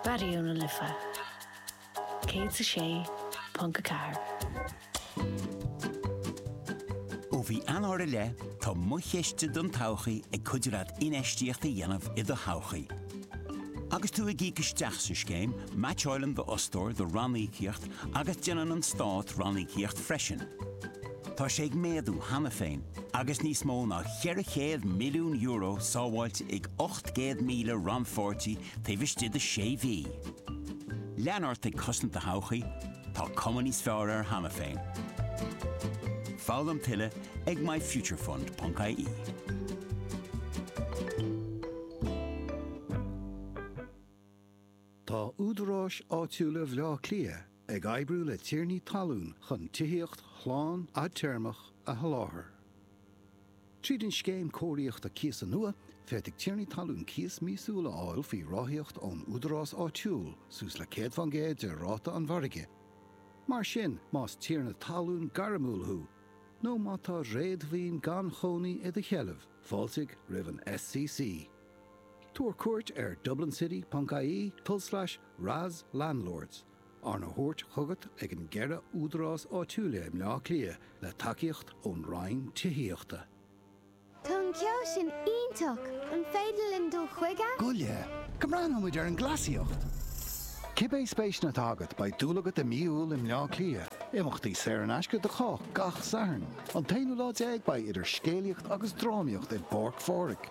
Raidió na Life 106.4. Ó mhí Eanáir i leith, tá mo chiste don todhchaí ag cuidiú leat infheistíocht a dhéanamh i do thodhchaí. Agus tú ag íoc isteach sa scéim, meaitseáileann d'fhostóir do ranníocaíocht agus déanann an Stát ranníocaíocht freisin. Tá sé ag méadú cheana féin agus níos mó ná €400 milliún sábháilte ag 800,000 rannpháirtí taobh istigh de sé mhí. Lean ort ag cosaint do thodhchaí, tá cuma níos fearr air cheana féin. Foghlaim tuilleadh ag myfuturefund.ie. Tá Údaráis Áitiúla Bhaile Átha Cliath ag oibriú le tiarnaí talún chun tithíocht shlán fhadtéarmach a sholáthar. Tríd an Scéim Cóiríochta Cíosa nua, féadfaidh tiarnaí talún cíos míosúil a fháil faoi ráthaíocht ón údarás áitiúil suas le 100 faoin gcéad de ráta an mhargaidh. Mar sin, más tiarna talún gairmiúil thú nó má tá réadmhaoin gan chónaí i do sheilbh, fáiltigh roimh an SCC. Tabhair cuairt ar dublincity.ie tulslais RAS Landlords, arna thabhairt chugat ag na ceithre údarás áitiúil i mBleá Cliath le tacaíocht ón Roinn Tithíochta. Tá an ceol sin iontach! An féidir linn dul chuige? Gabh i leith go mbreathnóidh muid ar an gcleasaíocht! Cibé spéiseanna atá agat, beidh dúil agat i mí Iúil i mBleá Cliath. Imeachtaí saor in aisce do chách gach Satharn. An t-aonú lá déag beidh idir scéalaíocht agus drámaíocht i bPáirc Phádraig.